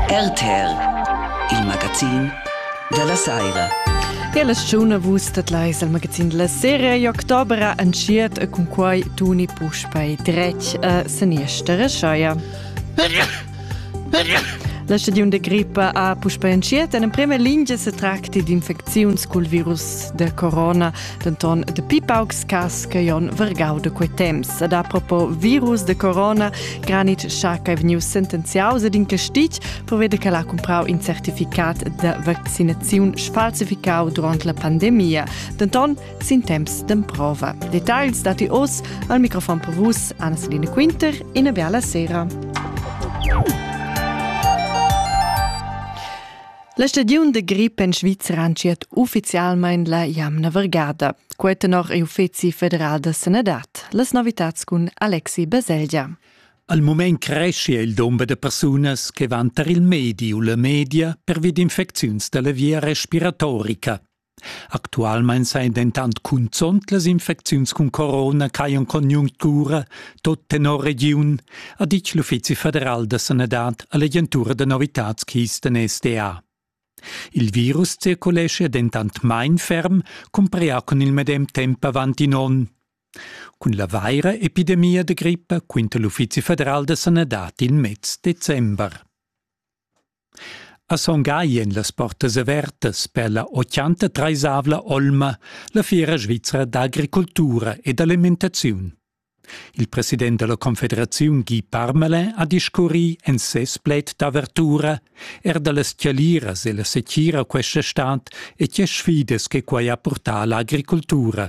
RTL, il magazin della saira. Quella stagione vus dat leis al magazin della serie e oktobra entschiet e cun quai tuni puspei dretg a seniester scheia. La stagiun de grippa ha puspei entschiet en prima lingia se tracti d'infecziuns col virus de corona. denton dapi paucs cas che Jon Vergau de quei temps. Ed a propo virus de corona, Granit cha che vegnius sentenziaus ed in castig provede che l'ha comprau in certificat de vaccinaziun sfalsificau durant la pandemia, denton sin temps d'emprova. Details dati oz al microfon per vus Anna-Celine Quinter in bella sera. La stagiun de grip en Svizra anciet ufficialmein la jamna vergada. Quei tenor il Uffizi federal da sanadad. Las novitats cun Alexi Baselgia. Al mument cresce il dumber de persunas che van tar il medi u la media pervi d'infecziuns dalla via respiratorica. Actualmein sein dentant cunzont las infecziuns cun corona ch'hajan en conjunctura tot tenor regiun, ha ditg l'Uffizi federal da sanadad all'agentura da novitads Kisten SDA. Il virus circulescha dentant main ferm, cumpria cun il medem temp avant in onn. Cun la vaira epidemia da grippa quinta l'Uffizi federal da sanadad il mez december. A Son Gagl ein las portas avertas per la ochanta treisavla olma la fiera svizra d'agricultura e d'alimentaziun. Il president dalla confederaziun Guy Parmelin ha discurri en ses plaid d'avertura er dallas chialiras e la setgira questa stad e tge sfidas che quei ha purtà alla agricultura.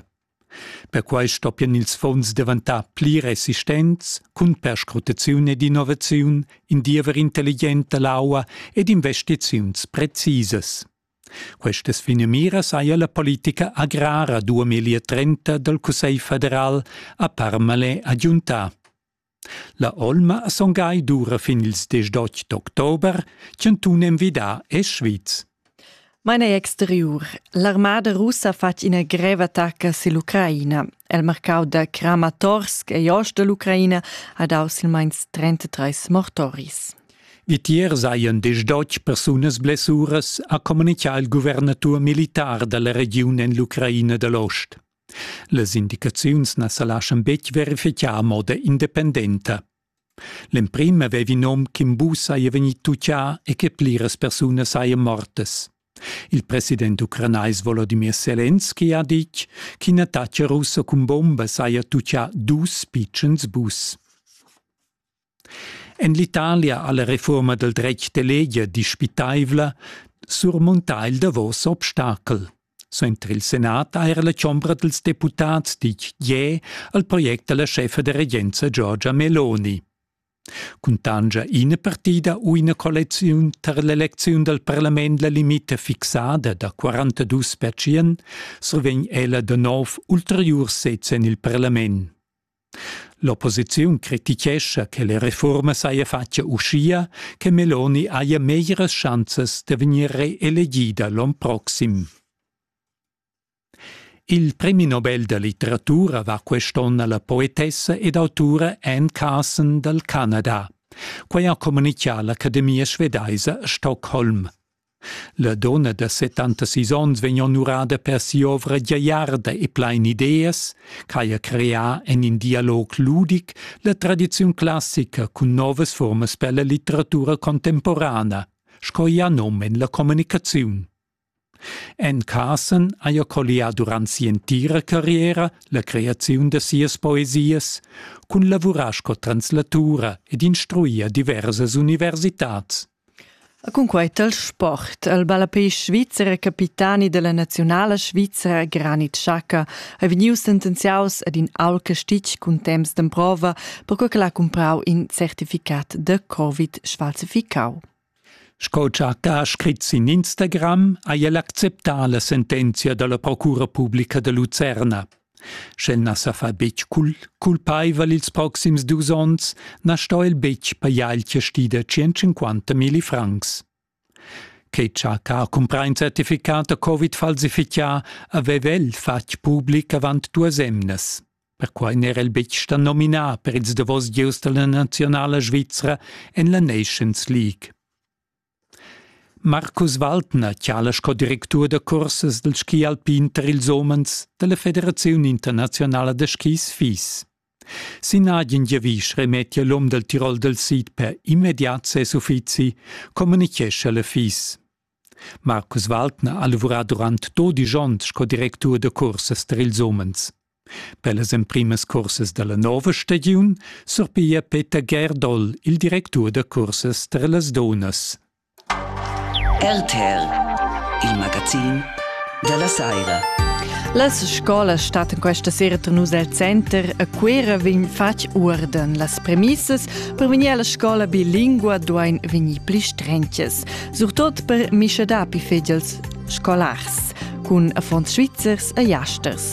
Perquai stoppian ils fons daventar pli resistents cun perscrutaziun ed innovaziun, in diever intelligent da l'aua ed investiziuns precisas. Questas finamiras haja la politica agrara 2030 dal Cussegl federal a Parmalais agiuntà. La olma ha son gai dura fin ils desch d'otg d'october, chantun envidà è Schwyz. Maina exteriur. L'armada russa ha fatg ina greva attacca sur l'Ucraina. El marcau da Kramatorsk e ost da l'Ucraina ha dau silmeins 33 mortoris. Vitier saien disdotg persunas blessuras, ha communicà il guvernatur militar dalla regiun en l'Ucraina dall'ost. Las indicaziuns na sa laschan betg verifichar a moda independenta. L'emprim avevi nom ch'Imbù saja vegnì tutgà e che pliras persunas sajan mortas. Il president ucranais Volodimir Selenski ha ditg ch'in attacc russo cun bomba saja tutgà dus pitschens bus. En l'Italia ha la refurma dal dretg d'eleger dispitaivla surmuntà il davos obstacel. Suenter il senat ha era la chombra dals deputads ditg je al project da la scheffa da regenza Giorgia Meloni. Cuntangia ina partida u ina collecziun tar l'elecziun dal parlament la limita fixada da 42 pertschien, survegn ella da nov ulteriurs sez en il parlament. L'opposiziun critichescha che la reforma saja fatga uschia che Meloni haja meglieras schanzas da vegnir reelegida l'onn proxim. Il premi Nobel da litteratura va quest'onn alla poetessa ed autura Anne Carson dal Canada. Quai ha communitgà l'Academia svedaisa Stockholm. La donna da settantasis onns vegn onurada per si'ovra giagliarda e plain ideas, quai ha creà en in dialog ludic la tradiziun classica cun novas furmas per la litteratura contemporana, sco i ha num en la communicaziun. En Carson haja collià durant si'entira carriera la creaziun da sias poesias, cun lavurar sco translatura ed instruir diversas universitads. E cunquei tal sport ha il ballapei svizzer e capitani dalla naziunala svizra Granit Xhaka ei vegnius sentenziaus ad in aul castitg cun temps d'emprova, perquei ch'el ha cumprau in certificat da covid sfalsificau. Sco Xhaka ha scrit sin Instagram, ha el acceptà la sentenzia dalla procura publica de Lucerna. Sch'el na sa fa betg cul culpaival ils proxims dus onns, na sto el betg pajar il chasti da 150 milli francs. Che chac ha cumprà in certificat da covid falsifichà aveva el fatg public avant duas emnas. Perquai n'era el betg stà nominà per ils davos gieus da la naziunala svizra en la Nations League. Marcus Waldner chala sco directur da cursas dal ski alpin tar ils umens da la Federaziun internaziunala da skis FIS. Sin agen giavisch remettia l'um dal Tirol dal sid per immediat ses uffizi, communitgescha la FIS. Marcus Waldner ha lavurà durant dodisch onns sco directur da cursas tar ils umens. Per las emprimas cursas dalla nova stagiun surpiglia Peter Gerdol il directur da cursas per las dunnas. RTL, il magazin dalla saira. Las scolas stat questa sera tenus el center a Cuera vegn fatg uorden. Las premissas per vegnir alla scola bilingua duain vegnir pli strenches, surtot per mischa dapi fegls scolars, cun affons svizzers e jasters.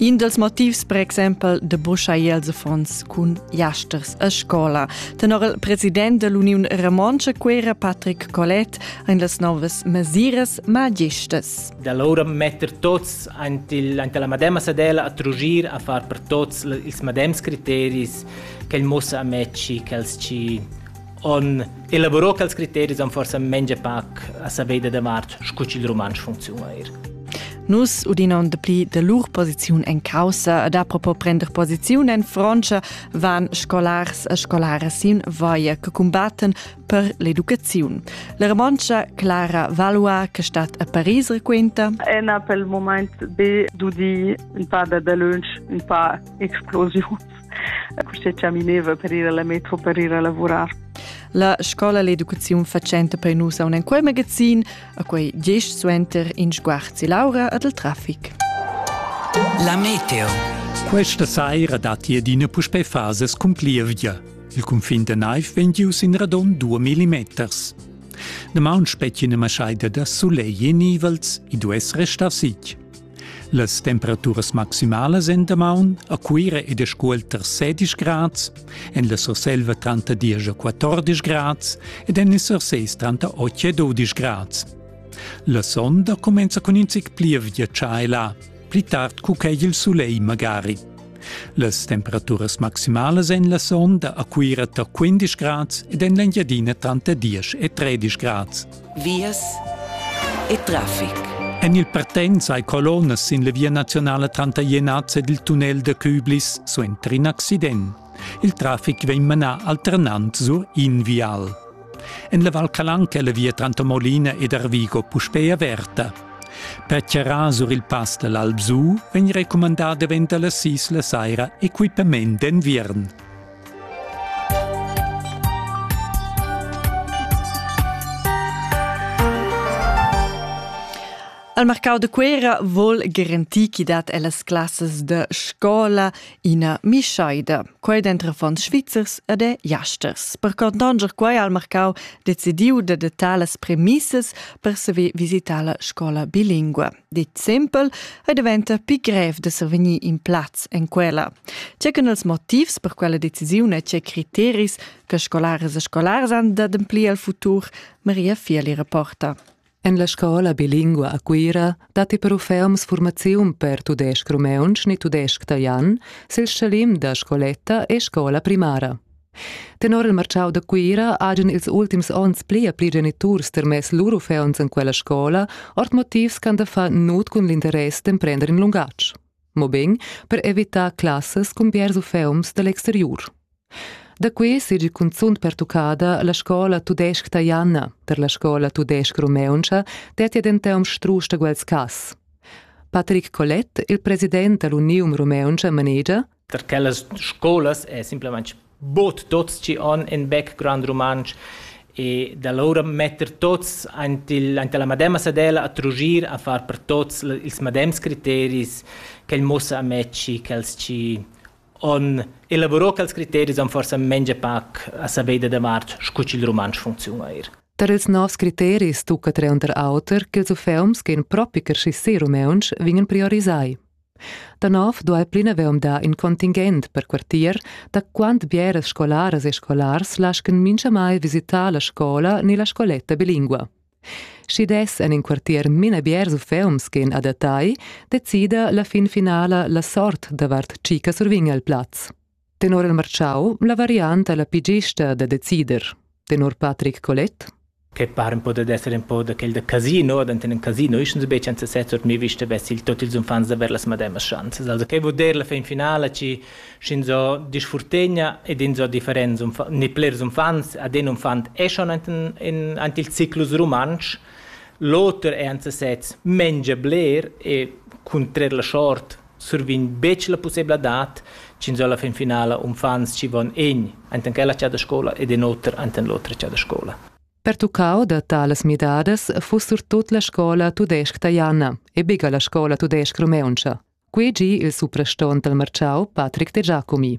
In dals motivs per exempel da buschair ils affons cun jasters a scola. Tenor il president dell'Uniun Romontscha Cuera, Patrick Collet, ein las novas mesiras magistas. Da allora metter tots ant, il, ant la madema sadella a trugir a far per tots ils madems criteris che il mussa a mecci, che els ci on elaborò quels criteris han forsa mengia pac a saveida davart scu ch'il rumantsch funcziuna eir. Nus udina on dapli de lur posiziun en caussa ed a propo prender posiziun en Frontscha van scolars e scolaras sin vaia che combatten per l'educaziun. La Romancha Clara Valois, che stat a Paris, requenta Ena pel moment be dudi un pa da dalunsch, un pa explosius. queste camineva per ir alla metro per ir a lavorar. La scola l'educaziun facenta per nus a un en quel magazin, a quei diesch suenter in sguarzi Laura ad il traffic. La meteo. Questa saira datti adina puspè fases cun plievgia. Il cunfin da naiv vegn gius in radon 2 mm. Damaun spettina maschaida da sulegl e nivels, i duess restar sitg. Las temperaturas maximalas en damaun a Cuira ed a Scuol tar 16 grads, en la Surselva tranter 10 e 14 grads ed en il Surseis tranter 8 e 12 grads. La sonda cumenza cun in zic plievgia tschai là, pli tard cu ch'è il sulegl magari. Las temperaturas maximalas en la sonda a Cuira tar 15 grads ed en l'Engiadina tranter 10 e 13 grads. vias e traffic. En il partenz hai colonnas sin la via nazionala tranter Jenaz ed il tunnel da Küblis suenter in accident. Il traffic vegn manà alternant sur in vial. En la Val Calanca è la via tranter Molina ed Arvigo puspè averta. Per charrar sur il pass da l'Alpsu vegn recumandà davent da las sis la saira equipament d'enviern. Al marcau de Cuera vol garantir chi dat ellas classas de scola ina mischaida, quei dentro fonds svizzers ed e jasters. Per contanger quei al marcau decidiu de dettar las premissas per saver visitar la scola bilingua. dit simpel e diventa pli grev da survegnir in plaz en quella. Tge che els motivs per quella decisiun e tge criteris che scolares e scolars han d'ademplir al futur, Maria Fieli reporta. En la scola bilingua a Cuira datti però ferms formaziun per tudesc-rumeuntsch ni tudesc-talian sil schalim da scoletta e scola primara. Tenor il marchau da Cuira hajan ils ultims onns pli e pli geniturs termess lur uffants en quella scola, ord motivs ch'han da far nut cun l'interess d'emprender in lungatg, mobein per evitar classas cun biars uffants dall'exteriur. Da qui seigi cunzunt pertuccada la scola tudesc taiana per la scola tudesc rumeuntscha dettia denton strusch da quels cass. Patrick Collet, il president dall'Unium Rumeuntscha, manegia per quellas scolas è simplamain bod tuts chi on in background rumantsch e da lura metter tuts aint il, aint la mademma sadella a trugir a far per tuts ils madems criteris ch'el mussa a mezzi quels chi on elaborò quels criteris on forsa mengia pac a saver da davart scu ch'il rumantsch funcziuna eir. Tar ils novs criteris tucca tre unter auter ch'ils uffeums che propi che si rumeuntsch vingen priorisai. Da nov duai plinavant dar in contingent per quartier da quant bieras scolaras e scolars laschan minchamai visitar la scola ni la scoletta bilingua. Schi dess en in quartier mina biers uffeums che adattai, decida la fin finala la sort davart Cica survign al plaz. Tenor il marchau la varianta è la pli gista da decider. Tenor Patrick Collet che pare un po' da essere un po' da quel da casino, da in casino, ich und be chanza sezzer mi vista bessi il tot ils umfants da ver las mademas schanzas. Also che vuol dire la fin finale ci scin so disfurtegna ed in so differenz ne plers umfants ad un umfant è schon in in il ciclus romansch l'oter è anzi sez mengia bler e contrar la short survegn betg la pussebladad ch'ins ho alla fin finala uffants chi van egn enten quella cha da scola ed in oter enten l'otra cha da scola. Pertuccau da talas midadas fuss surtut la scola tudesc-ta Janna e biga la scola tudesc-rumeuntscha. Quei gi il suprastont dal Marciau, Patrick De Giacomi.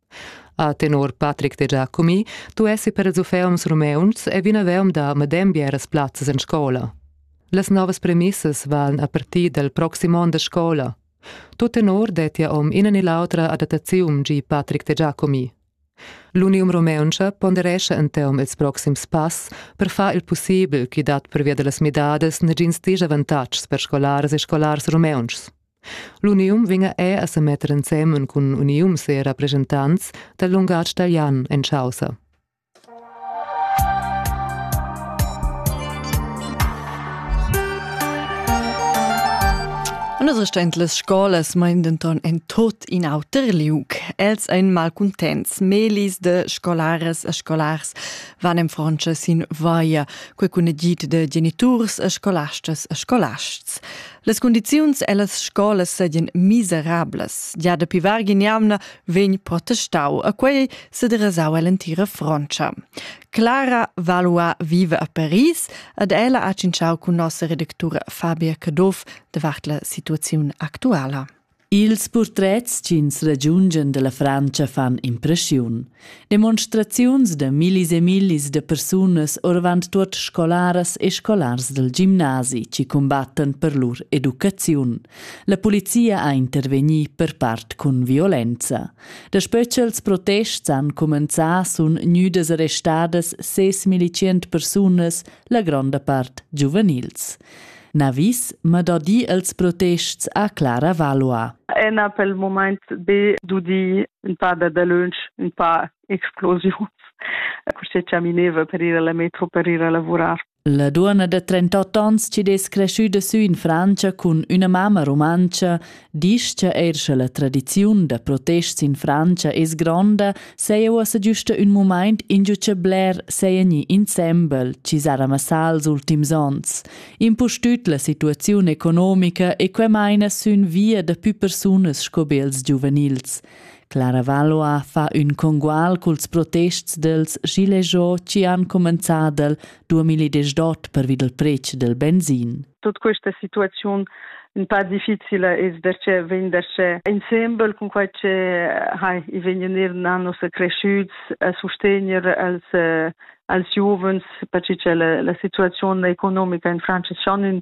A tenor Patrick Dejà Cumi duessi per ils uffants rumeuns e vinavant da medem bieras plazzas en scola. Las novas premissas van a partir dal proxim onn da scola. Tut tenor dettia om ina ni l'autra adattaziun, gi Patrick Dejà Cumi. L'Unium Rumeuntscha ponderescha en teom ils proxims pass per far il possibel ch'i dat pervia da las midadas nagins disavantatgs per scolaras e scolars rumeuntschs. L'unium vegna er a semetter ensemen cun uniums e rappresentants dal lungatg talian en chaussa. Non restend las scolas mein denton en tot in auter liug. Els ein malcontents. Melis de scolares e scolars van en Frontscha sin vaia, quei cun egid de geniturs e scolastas e scolasts. Las condiziuns ellas scolas seigien miserablas. Gia dapi vargin jamna vegn protestau a quei sederasau ell'entira Frontscha. Clara Valua vive a Paris ed ella ha tschintschau cun nossa redactura Fabia Caduff davart la situaziun actuala. Ils purtrets ch'ins ragiungia dalla Frantscha fan impressiun. Demonstraziuns da millis e millis da persunas orvant tuot scolaras e scolars dal gimnasi chi combattan per lur educaziun. La polizia ha intervegni per part cun violenza. Daspö ch'els protests han cumenzà sun gnüdas arrestadas ses militschient persunas la gronda part giuvenils. Navis ma da di els protests a Clara Valois. Ena pel moment be dudi un pa da dalönch, un pa explosius. Così camineva per ir alla metro per ir a lavorar. La duonna de 38 ans ci des cresciuda sü in Francia cun üna mamma rumantscha Disch cha eir sche la tradiziun da protests in Frantscha es gronda, saja uossa güsta ün mumaint ingio cha bler saja gni insembel chi s'ha ramassà els ultims ons. Impustüt la situaziun economica e que maina sün via da pü persunas sco be els giuvenils. Clara Valois fa ün congual culs protests dels gilets jaunes chi han comenzà del 2010 dot pervi dal pretsch del benzin. Tut questa situaziun un pa difficile es perche vegn darcheu insembel cun quai che ha i vegn eir na nossa creschüts a sustegner als als giuvens perche cha la, la situaziun economica in Francia schon in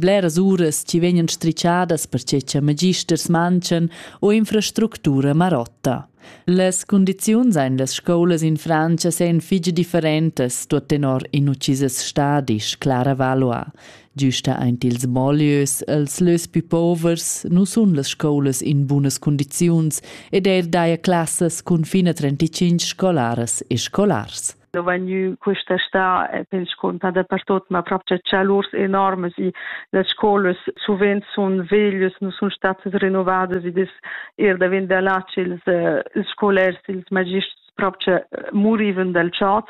Bleras uras ci vegnan strischadas perche cha magisters manchan o infrastructura marotta. Las condiziuns ein las scolas in Francia sein fige differentas, tuot tenor in uccises stadis, Clara Valois. Giusta ein ils bolieus, els lös più povers, nu sun las scolas in bunas condiziuns ed er daia classas cun fina 35 scolaras e scolars. Lo vegniu questa sta e scuntà da pertot ma proprio chalurs enormes i las scolas suvent sun veglias nu sun statas rinnovadas ed es er da vender là ils ils scolars ils magists proprio muriven dal chat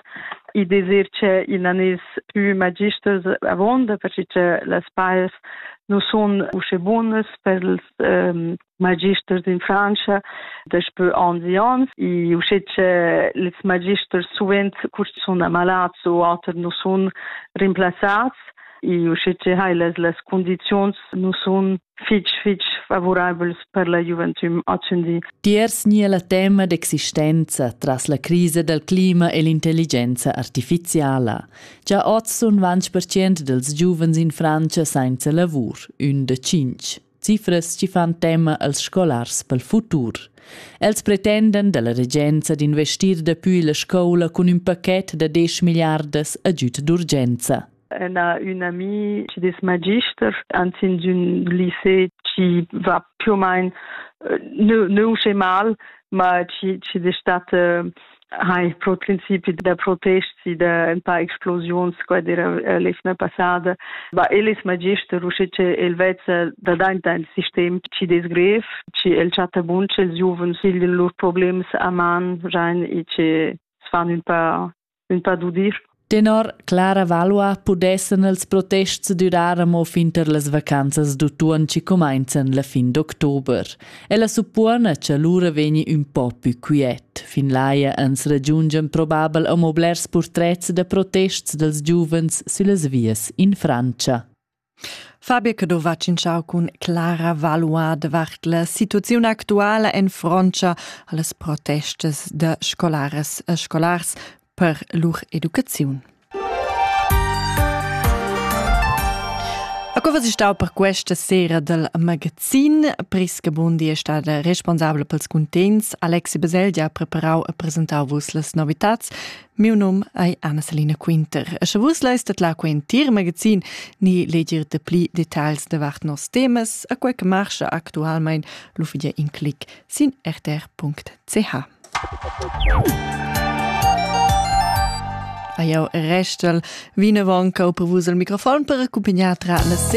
i desir che in anis più magisters avonda perché che las paias nu sun usche bunas per els ehm magisters in Frantscha daspö ons e ons e usche che les magisters suvent curs sun ammalats u oter nu sun rimplazzats e usche che hai las las condiziuns nu sun fitg fitg favorabels per la gioventüm ozendi. Tiers nia la tema d'existenza tras la crisa dal clima e l'intelligenza artificiala. Già oz sun 20% dels giuvens in Francia sainza lavur, ün da cinc. cifras chi fan tema als scolars pel futur. Els pretenden dalla regenza d'investir dapü la scoula cun ün paquet da 10 milliardas agüd d'urgenza. Elle a une amie qui des magisters, anzin d'un lycée qui va più ou moins euh, ne, ne au mal, ma qui, qui des state ha il pro principi da protesti da ein paar explosiuns qua dira eh, lefna passada ba elis magister usche che el vezza da dainta il sistem ci desgrev ci el chatta bunche els giuvens hilden lur problems a man rein e che sfan un paar un paar dudir Tenor Clara Valua pudessan els protests durar amo fin tar las vacanzas d'utuon chi cumainzan la fin d'october. Ella suppona cha lura vegni ün po pü quiet. Fin laia ans ragiungian probabel amo blers purtrets da protests dals giuvens süllas vias in Frantscha. Fabio Cadova tschintschau cun Clara Valois davart la situaziun actuala en frontscha allas protestas da scolaras e scolars per lur educaziun. A cosa si stau per questa sera del magazin? Priska Bundi è stata responsabile pels contents. Alexi Baselgia ha preparau e presentau vos las novitats. Miu num ei Anna-Selina Quinter. Sche vus leistet la quentir magazin ni legir de pli details davart nos temas, a quei che marscha actualmein l'uffidia in clic sin rtr.ch. A jau restel vinavon cau per vus al microfon per accumpagnar tra la sera